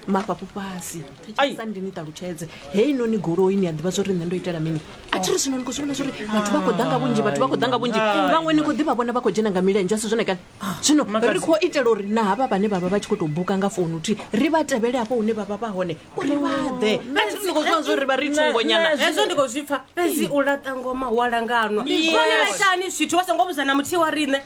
mafhafhu fhasi Ai. sa ndi ni ṱalutshedze hei noni goloi ni a ḓivha zwo ri nṋe ndo itela mini a thi ri zwino ni khou zwi vhona zwori vhathu vha khou ḓa nga vhunzhi vhathu vha khou ḓa nga vhunzhi vhaṅwe ni khou ḓivha vhona vha khou dzhena nga milenzhe a si zwone kani zwino Makadzi. ri khou itela uri na havha vhane vha vha vha tshi khou tou buka nga founu thi ri vha tevhele hafho hune vha vha vha hone uri vha ḓe a thi ri ni khou zwi vhona zwori vha ri thungonyana hezwo ndi khou zwi pfa fhedzi u laṱa ngoma hu a langanwa Yes. vhone vhaitani zwithu vha songo vhudza na muthihi wa riṋe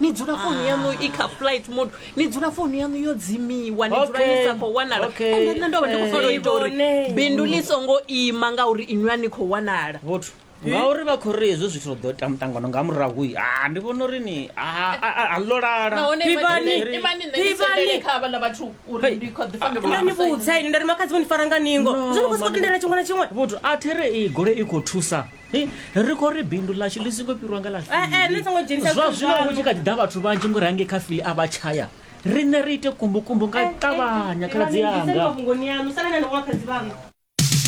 ni dzula founu yanu i kha flight mode ni dzula founu yanu yo dzimiwa ni dzula ni sa khou wanala ende nṋe ndo vha ndi khou fanela u ita uri bindu ḽi songo ima ngauri inwi a ni khou wanala vhothu ngauri vha khou ri hezwo zwithu ḓo ita muṱangano nga murahu ha ah, ndi vhona uri ni ah, ah, a ḽo lalaivhudza ini nda ri makhadzi vho ni fara nga ningo zwo ni khou sokou tendela tshiṅwe na tshiṅwe vhothu a there i gole i khou thusa Hei, ri khou ri bindu ḽashu ḽi songo fhirwa nga ḽa Eh, eh, ni songo dzhenisa zwa zwithu zwino zwaṋu. hu tshi kha ḓi ḓa vhathu vhanzhi ngori hangei kha fili a vha tshaya riṋe ri ite kumbukumbu nga u ṱavhanya khaladzi yanga mafhungoni yanu salana ni woṱhe dzivhanga